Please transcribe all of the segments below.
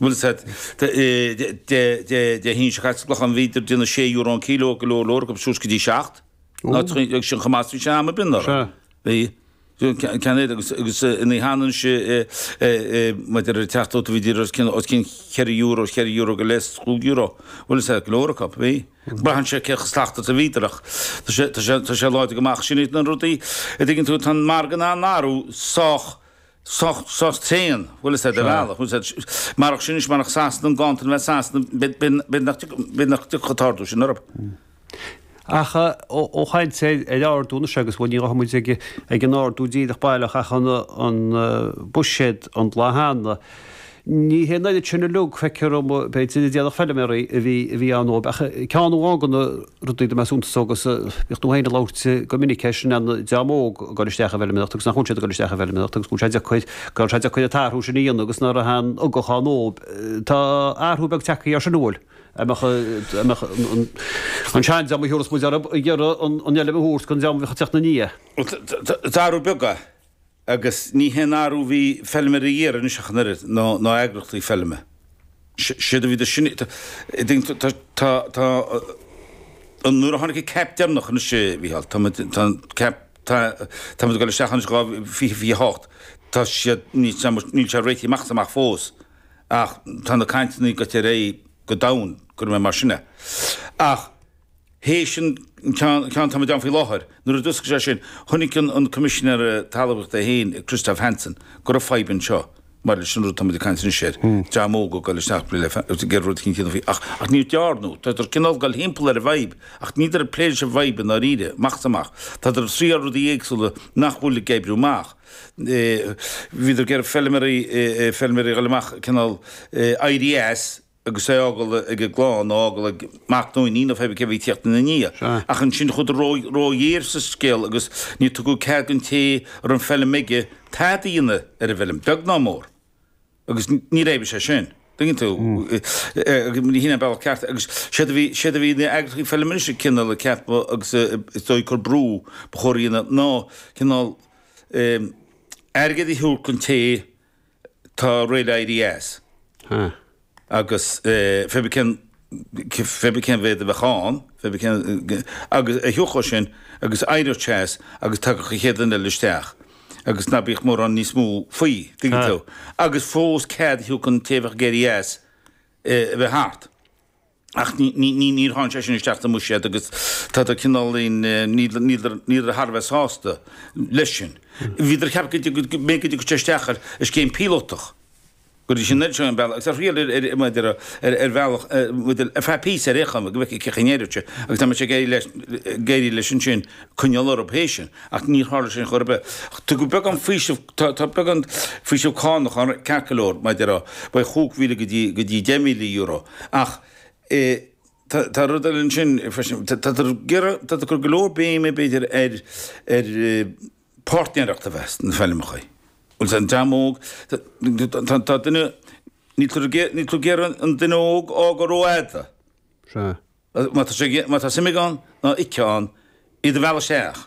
bhfuil a fhios agat de hinse chaitliceach an bhíodar ag déanamh sé euro an cíleo go leor leor acu, agus suas go dtí seacht. Agus sin chomh maith is bhí sé am ar bith orthu. Bhí ceann air agus ina hionann is mar de réir teacht ota bhí díreach os cionn os cionn cheithre euro, cheithre euro go leith, chúig euro. Bhfuil a fhios agat go leor acu, bhí. Braitheann sé cé chomh slacht atá bhíodar ach tá sé láidir go maith ach sin iad na rudaí an dtuigeann tú tá an margadh tá an margadh sách Sách tréan, bhuel is é de bhealach, ús é, marach sin is marach Sasana an ganntan a bheith i Sasana, beidh nach beidh nach dtiocfadh an t-ardú sin orthu. Ach ó chaint sé ar ardú anois agus bhuel ní ghabhfaidh muid ag an ardú díreach baileach ach an buiséad an lá cheana. Ní hé an oiread sin uilig, feictear dom, b'fhéidir, a d'fhéadfadh feilméaraí a bhí a bhí ann dóibh, ach ceann amháin de na rudaí a dtug mé suntas dó agus bíonn tú féin ag labhairt go minic air sin, an dream óg ag dul isteach i bhfeilméaracht agus nach bhfuil siad ag dul isteach i bhfeilméaracht agus go bhfuil sé deacair, go raibh sé deacair an t-athrú sin a dhéanamh agus nach raibh aon ugach ann dóibh. Tá athrú beag tagtha air sin, an bhfuil? a mbeadh an an seandream mar a thabharfas muid orthu ag iarraidh an fheilm a thabhairt don dream a bheadh ag tíocht ina ndiaidh. Tá athrú beag, Agus ní hé an t-athrú a bhí feilméaraí ag iarraidh anois ach an oiread, ná eagraíochtaí feilme. Séard a bhí do sin, tá, tá, tá, nuair a tháinig an CAP deireanach anois a Mhícheáil, tá muid, tá an cap, tá, tá muid ag dul isteach anois dhá fiche fiche hocht, tá siad, níl sé, níl sé réitithe amach is amach fós ach tá na cainteanna ag goil ar aghaidh go domhain, cuirfidh mé mar sin é. Ach. Théis an ceann atá muid ann faoi láthair, nuair a d'oscail sé sin, chonaic an Coimisinéir Talmhaíochta féin, Christophe Hansen, go raibh fadhb anseo, maidir leis an rud atá muid ag caint anois air, dream óg ag goil isteach le géarr rud éigin a dhéanamh faoi, ach níor dearnadh, tádar cineál ag goil thimpeall ar an bhfadhb, ach níldar ag plé leis an bhfadhb i ndáiríre, amach is amach. Tádar ag triáil rudaí éagsúla nach bhfuil ag oibriú amach. Bhíodar ag iarraidh feilméaraí, feilméaraí a ghoil amach, cineál éirí as, agus é a fhágáil ag a gclann, nó a fhágáil ag mac nó iníon nó feibe cé a bhí ag tíocht ina ndiaidh. Ach ansin chuadar róghéar sa scéal agus níor tugadh cead don té a raibh an fheilm aige tada a dhéanamh ar an bhfeilm, beag ná mór. Agus ní raibh sé sin, tuigeann tú, ní shin an bealach ceart. Agus séard a bhí, séard a bhí na heagraíochtaí feilme anois ag cineál, ag ceapadh agus is dóigh ag cur brú, ba chóir a dhéanamh ná cineál, eh, airgead a thabhairt don té, tá réidh le éirí as. Huh. Agus feibe cén, feibe cén mhéid a bheadh ann, feibe cén, agus a thabhairt dó sin agus éiríodh sé as agus tagadh an chéad duine eile isteach agus ná bíodh mórán níos mó faoi, tuigeann tú. Agus fós cead a thabhairt don té a bheadh ag éirí as a bheith thart. Ach níor tháinig sé sin isteach sa mbuiséad agus táthar cineál, níltear thar a bheith sásta leis sin. Bhíodar ag ceapadh go dtí go mbeidh go dtí isteach ar scéim píolótach, go dtí sin sin an bealach agus ar thriail ar bhealach ar feadh píosa ar aon chuma go bhfeicfeadh cén chaoi a n-éireodh agus dá mbeadh ag éirí leis ansin coinneáil orthu théis sin ach níor tharla sin chor ar bith. Tugadh beagán faoisimh Tá beagán faoiseamh cánach ann, ceart go leor, maidir le beidh chúig mhíle go dtí deich míle euro, ach tá rud eile ansin freisin, táthar ag cur go leor béime b'fhéidir ar páirtnéireacht a bheith sna feilmeacha, bhfuil an dream óg, tá duine, níl tú ag iarraidh an duine óg á gcur rófhada, má tá suim aige ann nó aici ann, iad a mhealladh isteach.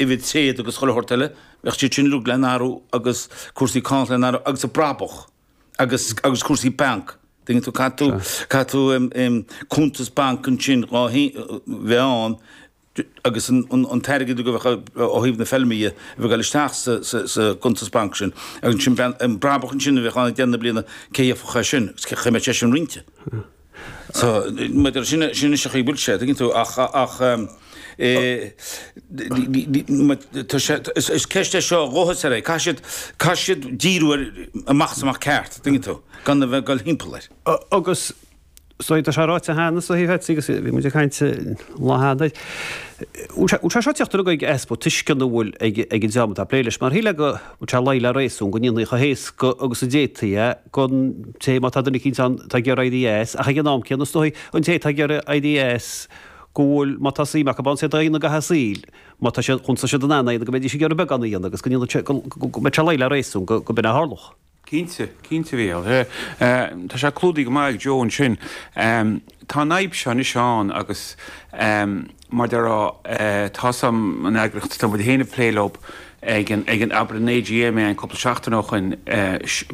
uimhir tréad, agus chuile shórt eile, bheadh siad sin uilig le n-athrú agus cúrsaí cánach le n-athrú agus an brabach agus agus cúrsaí bainc, dtuigeann tú, caithfidh tú, caithfidh tú cuntas bainc ansin dhá bheith ann agus an t-airgead a bheadh ó thaobh na feilme dhe, a bheith ag dul isteach sa sa gcuntas bainc sin agus ansin bheadh an brabach ansin a bheadh ann ag deireadh na bliana, cé a íocfadh é sin, agus cén chaoi a mbeadh sé sin roinnte. Tá, maidir sin, sin é an chaoi a bhfuil sé, tuigeann tú, ach, ach, is ceist é seo dháiríre, caithfidh siad, caithfidh siad díriú ar, amach is amach ceart, tuigeann tú, gan a bheith ag dul thimpeall air. Agus, so, tá sé ráite cheana, so, bhí muid ag caint an lá cheana, bhfuil sé seo ag teacht ar aghaidh ag easpa tuisceana a bhfuil ag an dream atá ag plé leis, mar shíl mé go, mbeadh sé ag luí le réasún go ndéanfaí chomh héasca agus a d'fhéadfaí é, don té, má tá duine eicínt ann atá ag iarraidh éirí as, ach ag an am céanna is dóigh, an té atá ag iarraidh éirí as, go bhfuil, má tá suim acu ann, is é d'aon aghaidh a saoil, má tá siad, chúns tá siad in ann é a dhéanamh, go mbeidís ag iarraidh beagán a dhéanamh agus go ndéanfadh sé, go mbeadh sé ag luí le réasún go go b'in a tharlódh. Cinnte, cinnte bhuel. Tá sé clúdaithe go maith ag Joe ansin. Tá an fhadhb seo anois ann agus. mar a déarfá tá a fhios agam an eagraíocht atá muid féin ag plé leo ag an ag an abair an AGM é an cúpla seachtain ó shoin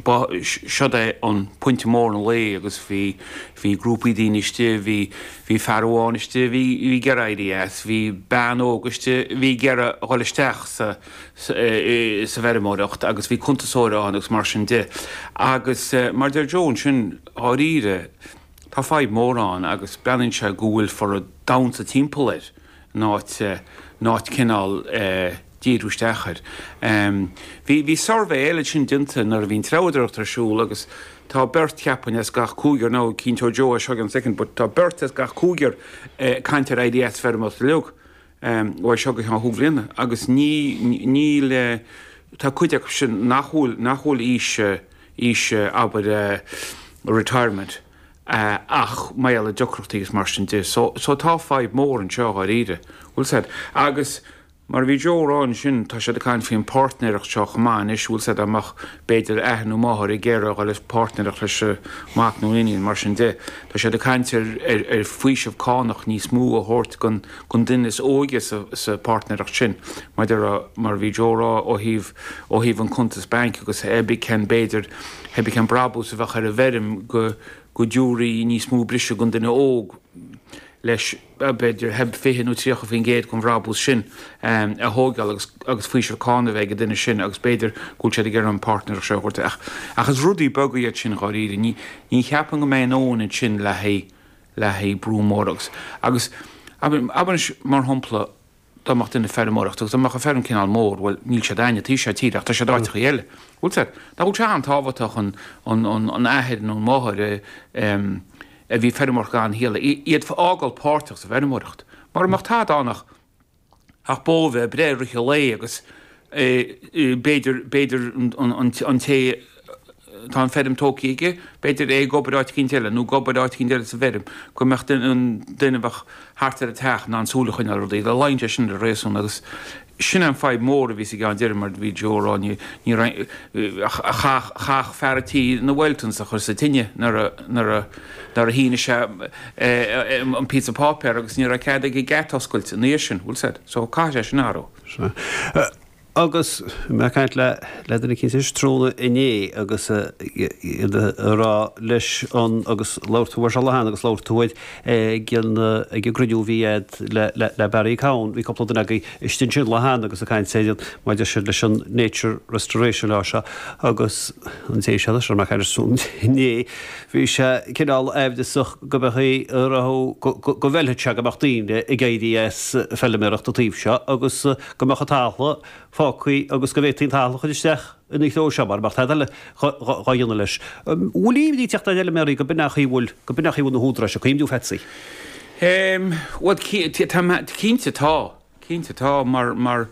ba siod é an pointe mór an lae agus bhí bhí grúpaí daoine istigh bhí bhí fear amháin istigh bhí bhí ag éirí as bhí bean óg istigh bhí ag iarraidh a dhul isteach sa sa sa bhfeirmeoireacht agus bhí cuntasóir ann agus mar sin de agus mar deir Joe ansin dháiríre Tá fadhb mhór ann agus breathnaíonn sé go bhfuiltear ag damhsa timpeall air in áit in áit cineál díriú isteach air. Bhí bhí suirbhé eile ansin déanta nuair a bhí an treabhadóireacht ar siúl agus tá beirt, cheapfainn, as gach cúigear nó cinnteoidh Joe é seo i gceann soicind but tá beirt as gach cúigear ag caint ar éirí as feirmeoireacht uilig. uaidh seo go ceann chúig bliana, agus níl, tá cuid acu sin nach bhfuil, nach bhfuil aois, aois, abair, retirement, ach mar gheall ar dheacrachtaí agus mar sin de. So, so tá fadhb mhór anseo, dháiríre. Bhfuil a fhios a'd, agus mar a bhí Joe a rá ansin, tá siad ag caint faoin pháirtnéireacht seo chomh maith anois, bhfuil a fhios a'd, dá mbeadh b'fhéidir athair nó máthair ag iarraidh a dhul i bpáirtnéireacht leis an mac nó an iníon, mar sin de. Tá siad ag caint ar, ar, ar faoiseamh cánach níos mó a thabhairt don. an duine is óige sa pháirtnéireacht sin, maidir le mar a bhí Joe a rá, ó thaobh ó thaobh an cuntas bainc agus hé bith cén b'fhéidir hé bith cén brabús a bheadh ar an bhfeirm go go dtiúrfaí níos mó briseadh don duine óg leis b'fhéidir hé bith fiche nó tríocha faoin gcéad den bhrabús sin a thóigeáil agus agus faoiseamh cáin a bheith ag an duine sin agus b'fhéidir go bhfuil siad ag iarraidh an páirtnéireacht seo a thabhairt isteach ach is rudaí beaga iad sin dháiríre ní ní cheapaim go mbeidh a ndóthain ansin le haghaidh le haghaidh brú mór agus, agus, abair anois, mar shampla, dá mbeadh duine ag feirmeoireacht agus dá mbeadh an fheirm cineál mór, bhuel, níl siad againn an taobh seo tíre ach tá siad áiteachaí eile, bhfuil a fhios a'd, nach bhfuil sé an-tábhachtach an, an, an, an athair nó an máthair a, em, a bhí ag feirmeoireacht an talamh, iad a fhágáil páirteach sa bhfeirmeoireacht. Mura mbeadh tada ann ach. ach bó a bheith ag breith i rith an lae agus b'fhéidir, b'fhéidir an té atá an feirm tógtha aige, b'fhéidir é ag obair áit eicínt eile nó ag obair áit eicínt eile sa bhfeirm, go mbeadh duine, an duine a bheadh thart ar an teach in ann súil a choinneáil ar rudaí. Luíonn sé sin le réasún agus sin é an fadhb mhór a bhí sa gceann deiridh mar bhí Joe a rá, ní raibh, chaithfeadh fear an tí na wellingtons a chur sa tine nuair a, nuair a. Nuair a shínigh sé an píosa páipéir agus ní raibh cead aige geata oscailt ina dhiaidh sin, bhfuil a fhios a'd, so caithfidh sé sin a athrú. Sea. Agus mé ag caint le duine eicínt tráthnóna inné agus iad a rá leis an, agus labhair tú air seo an lá cheana agus labhair tú air ag an, ag an gcruinniú a bhí a'd le, le, le Barry Cowen, bhí cúpla duine againn istigh ansin lá cheana agus ag caint ar an, maidir sin leis an nature restoration law seo agus an té a bhí sé anois, a raibh mé ag caint leis inné, bhí sé cineál aimhreasach go mbeadh a raibh, go bhfeilfeadh sé go mbeadh daoine ag éirí as feilméaracht an taobh seo agus go mbeadh an talamh fágtha agus go bhféadfaí an talamh a chur isteach ina threo seo mara mbeadh tada dhá dhéanamh leis. Bhfuil imní ag tíocht ar fheilméaraí go b'in é an chaoi a bhfuil, go b'in é an chaoi a bhfuil na húdaráis ag cuimhniú, a Pheatsaí? Bhuel cinnte tá, cinnte tá mar, mar.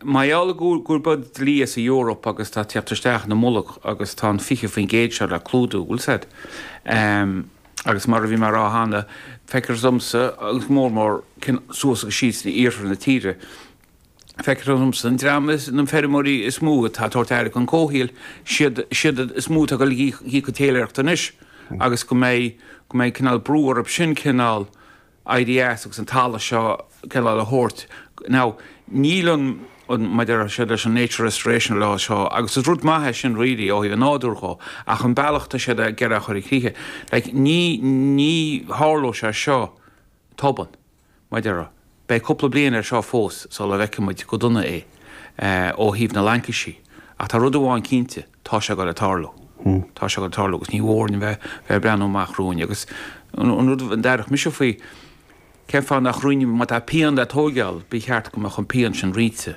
Mar gheall gurb iod dlí as an Eoraip agus tá sé ag tíocht isteach ina mullach agus tá an 20% seo le clúdú, bhfuil a fhios a'd? Agus mar a bhí mé a rá cheana, feictear domsa, agus go mór mór suas agus síos in iarthar na tíre, feictear domsa an dream is, na feirmeoirí is mó atá ag tabhairt aire don comhshaoil, siad, siad is mó atá ag dul ag íoc an téiléireacht anois agus go mbeidh, go mbeidh cineál brú orthu sin cineál, éirí as agus an talamh seo ceann eile a thabhairt. Now, níl an, mar a deir siad leis an nature restoration law seo, agus is rud maith é sin really ó thaobh an nádúir dhó, ach an bealach atá siad ag iarraidh é a chur i críche, like ní, ní tharlóidh sé seo go tobann, mar a deir, beidh cúpla bliain air seo fós sula bhfeicfidh muid go dona é ó thaobh na laincisí, ach tá rud amháin cinnte, tá sé ag goil ag tarlú, tá sé ag goil ag tarlú agus ní mór dhúinn bheith ag breathnú amach romhainn. Agus an rud a déarfadh mise faoi, cén fáth nach roinnfí, má tá pian le tóigeáil, ba cheart go mbeadh an pian sin roinnte.